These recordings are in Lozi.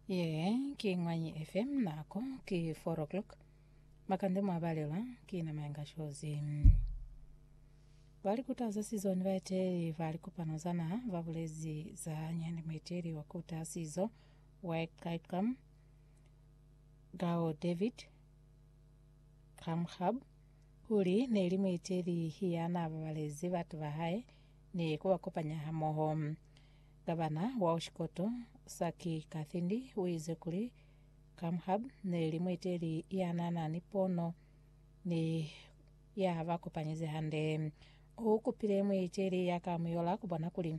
Ye ki Ñwanyi FM, nako ki 4 o'clock. Makande mwa balelwa ki na Mayenga Shozi. Bali kutaza sizo ni baeteli ba likopano za naha ba bulezi za nyani mueteli wa kuta sizo wa Icacam Gao David Kamhab kuli neli mueteli ya na babalezi batu ba hae ni ku ba kopanya hamoho. Gavana wa Oshikoto, Saki Kathindi, uize kuli Kamhab neli mueteli yanana ni pono ni ya ba kopanyezi hande. U kupile mueteli ya ka muyola kubona kuli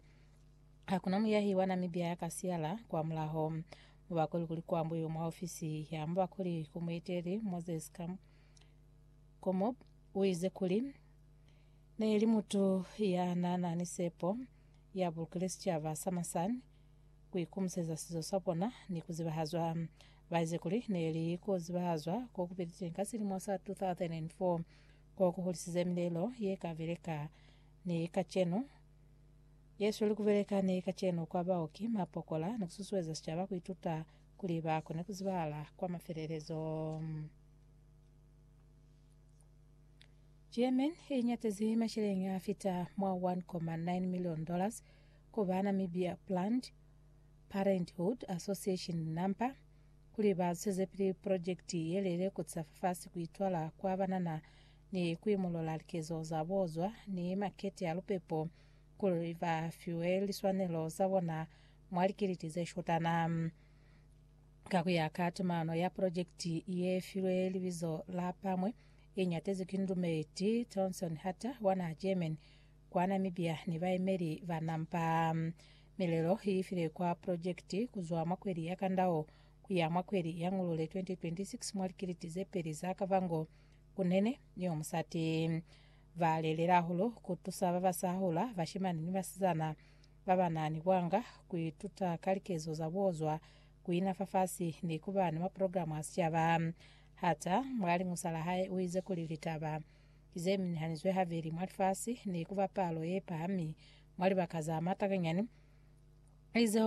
hakuna muyahi wa Namibia ya ka siyala kwa mulaho. Mubakuli kuli kuambuiwe mwa ofisi ya mubakuli ku mueteli Moses Kamhab uize kuli, Ne li mutu ya na na ni sepo, ya bulukile sicaba sa masani ku ikumuseza sizo sa bona ni ku zibahazwa. Ba ize kuli ne li ku zibahazwa ko ku piliteñi ka silimo sa 2004 ko ku hulisize milelo ye ka beleka ni kacenu, ye sweli ku beleka ni kacenu kwa bao ki mapokola ni ku susueza sicaba ku ituta kuli ba kone ku zibahala kwa mafelelezo. German i ñatezi maceleñi a fita mwa 1.9 million dollars ku ba Namibia Planned Parenthood Association, NAMPA, kuli ba zwezepili purojekiti ye lele ku tisa fafasi ku itwala kwa banana ni ku imolola likezo za bo zwa ni makete a lupepo kuli ba fiwe liswanelo za bona mwa likiliti ze shotana. Ka ku ya ka tumano ya projekiti ye filwe libizo la Pamwe, i ñatezwi ki Ndumeti Tonson Hatter wa naha Germany, kwa Namibia ni baemeli ba NAMPA. Milelo i file kwa projekiti ku zwa mwa kweli ya Kandao ku ya mwa kweli ya Ngulule 2026 mwa likiliti ze peli za Kavango, Kunene ni yo musati. Ba lelelahulu ku tusa ba ba sa hula, bashimani ni basizana, ba ba na ni bwanga, ku ituta ka likezo za bo zwa ku ina fafasi ni ku ba ni maprograma a sicaba. Hata, mwa liñusa la hae, u ize kuli litaba ze minihanizwe haveli mwa lifasi ni ku ba palo ye pahami mwa libaka za matanganyani, ize,